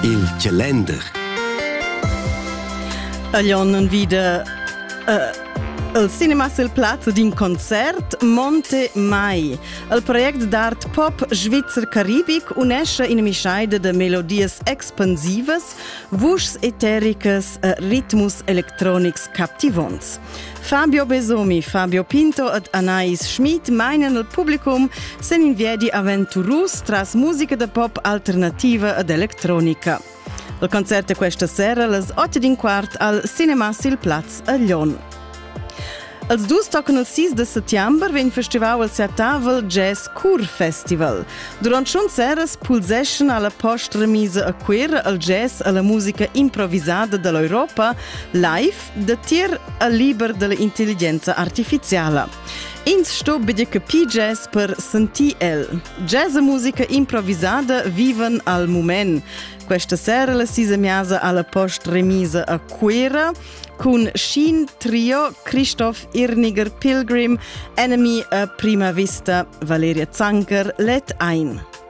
Il calender. Aglion non vide uh, il cinema sul plazzo d'un concert Monte Mai. Il project d'art pop svizzer caribic unesce in mischaide de melodies expansivas, vuschs etericas e ritmus electronics captivonts. Fabio Besomi, Fabio Pinto ed Anais Schmid mainan il publicum sen in viedi aventurus tras musica da pop alternativa ed electronica. Il concert è questa sera las 8 din quart al Cinema sil Plaz a Lyon. Als dus tocan il 6 de settembre vegn festival al Seatavel Jazz Cur Festival. Durant schon seras pulseschan alla post-remisa a Quir al jazz e la musica improvisada dall'Europa live Datier al liber dell'intelligenza artificiala. Ins sto bedir capir jazz per sentir el. Jazz e musica improvisada vivan al moment. Questa sera la sisemiasa alla post remisa a Cuera con Shin Trio, Christoph Irniger Pilgrim, Enemy a Prima Vista, Valeria Zanker, Let Ein.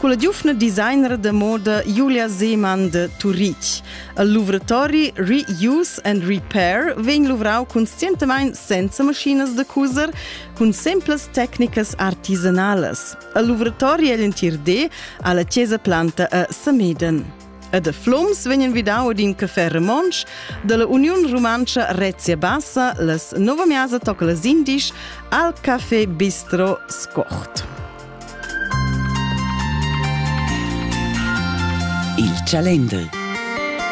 Culla giuvna designer da moda Julia Seemann de Turitg. Il luvratori Reuse and Repair vegn luvrau conscientamein senza maschinas da cuser cun simplas tecnicas artisanalas. Il luvratori egl entir di alla Chiesa Planta a Sameden. e da flums vegnan vidau ad in café romontsch dalla Uniun Rumantscha Rezia Bassa las nova miasa tocca las indisch al Café Bistro Scort. Il Calender